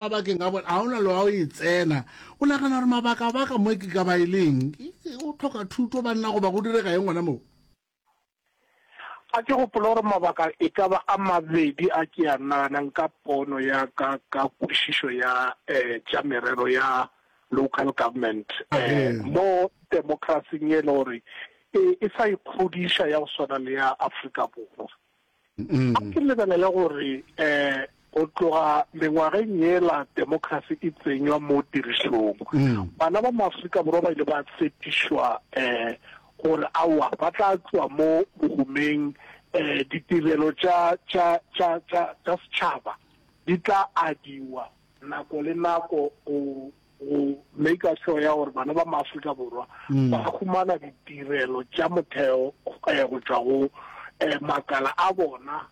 Mabakeng a bona, ga ona le wa o e tsena. O nagana gore mabakabaka mo ke ka ba e leng? O tlhoka thuto banna goba go direga eng gona moo? A ke gopola gore mabaka e ka ba a mabedi a ke a naganang ka pono ya ka ka kwešišo ya tša merero ya local government mo demokrasing ye e le gore e sa ikgodiša ya go swana le ya Afrika Borwa. A ke lebelele gore go tloga mengwageng yela democracy e tsenywa mo tirišong, bana ba maAfrika Borwa ba ile ba tshepišwa gore aowa ba tla tloa mo bohumeng, ditirelo tša setšhaba di tla adiwa nako le nako go go maker sure ya gore bana ba maaforika borwa mm. ba humana ditirelo tša motheo eh, go tšwa go eh, makala a bona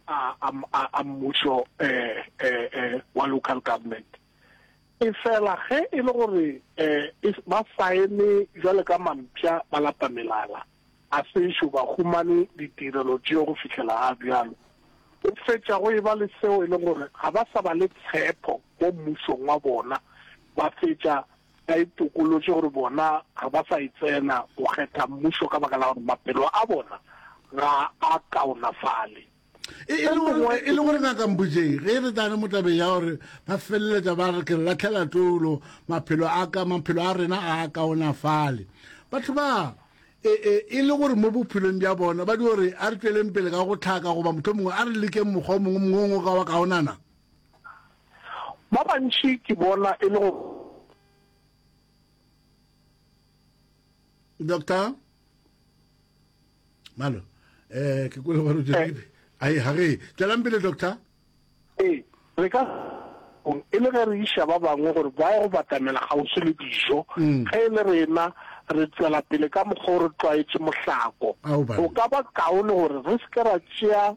a mmušo eh, wa local government e fela ge e le gore ba saene jwale ka mampša ba lapa melala A sešo ba humane ditirelo tšeo go fihlela ga bjalo, go fetša go eba le seo e lego gore ga ba sa ba le tshepo mo mmusong wa bona, ba fetša ba itokolotše gore bona ga ba sa e tsena go kgetha mmušo ka baka la gore maphelo a bona ga a kaonafale. E, e, e le gore ngaka mbujeng ge e re tane mo tabeng ya gore ba feleletsa ba re ke re latlhela tolo maphelo a ka maphelo a rena a kaonafale batho ba e, e, e le gore mo bophelong bja bona ba di gore a re tsweleng pele ka go tlhaka goba motho mongwe a re lekeng mokgwa o mongwe mongwe o ka wa kaonana ba bantši ke bona e le go doctor malo eh ke kwele gore eh. ai ha re tšwelang pele doctor ee re ka e le ge re iša ba bangwe gore ba ye go batamela kgauswi le dijo mm. ge e le rena re tswela pele ka mokgwa o re tlwaetse mohlako o ka ba kaone gore re seke ra tšea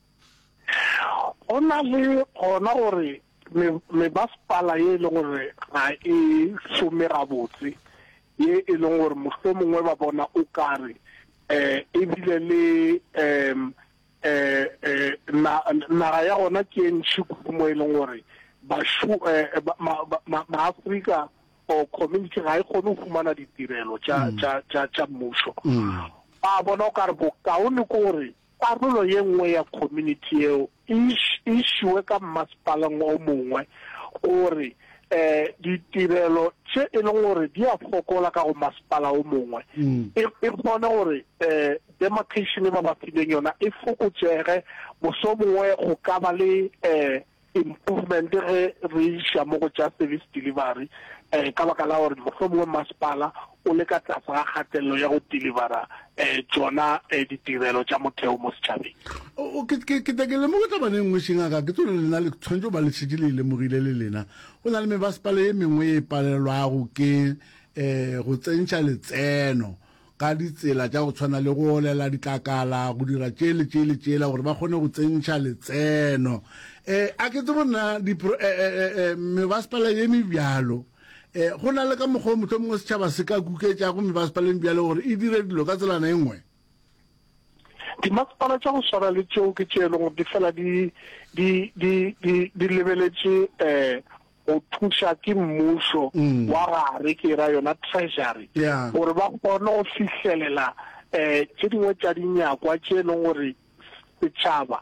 Go na le gona gore me, mebasepala ye e le gore ga e šome gabotse, ye e leng gore mohlomongwe ba bona o kare eh e bile le em eh eh na naga ya gona ke e ntšhi kudu mo e leng gore bashu eh ba ma, ma, ma Afrika or community ga e kgone go fumana ditirelo tša tša tša tša mmušo. Ba bona o kare bokaone ke gore Karolo ye nngwe ya community yeo e e šiwe ka mmasepaleng o mongwe gore ditirelo tše e leng gore di a fokola ka go masepala o mongwe e e kgone gore demarcation e ba ba fileng yona e fokotšege moso mongwe go ka ba le improvement ge re iša mo go tša service delivery um ka baka la gore mohlomongwe masepala o le ka tlase ga kgatelelo ya go delivera um tsona um ditirelo tša motheo mo setšhabeng ke ta ke lemoge tabane nngwe šengaka ke tsone lena le tshwanetse ba le šetše le e lemogile le lena go na le mebasepala ye mengwe e palelwago ke um go tsentšha letseno ka ditsela tša go tshwana le go olela ditlakala, go dira tše le tše le tšela gore ba kgone go tsentšha letseno. Um a ke tsebo nna dipro-, um, um, um, um, mebasepala ye mebjalo, um go na le ka mokgwa o mohlomongwe setšhaba se ka kuketšago mebasepala ye mebjalo gore e dire dilo ka tselana e nngwe? Dimasepala tša go swana le tšeo ke tše e lego di fela di, di, di, di, di lebeletše um go thuša ke mmušo wa gare, ke ra yona treasury, gore ba kgone go fihlelela tše dingwe tša dinyakwa tše e leng gore setšhaba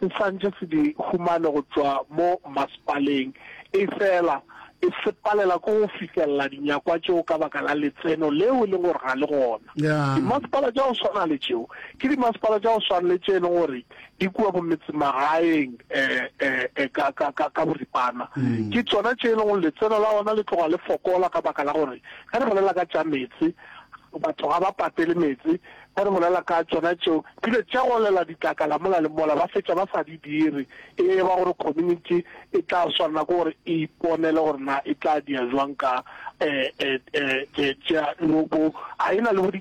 se santše se di humane go tšwa mo masepaleng, efela e se palela ke go fihlelela dinyakwa tšeo ka baka la letseno leo e leng gore ga le gona. Dimasepala tša go swana le tšeo ke dimasepala tša go swana le tše e leng gore di kua bo metsemagaeng e ka ka ka ka boripana ke tsona tše e lego letseno la ona le tloga le fokola ka baka la gore ge re bolela ka tša metse batho ga ba patele metse ge re bolela ka tsona tšeo bile tša golela ditlakala mola le mola ba fetša ba sa di dire e ba gore community e tla swanela ke gore e iponele gore na e tla dia jwang ka um tša lobo a e na le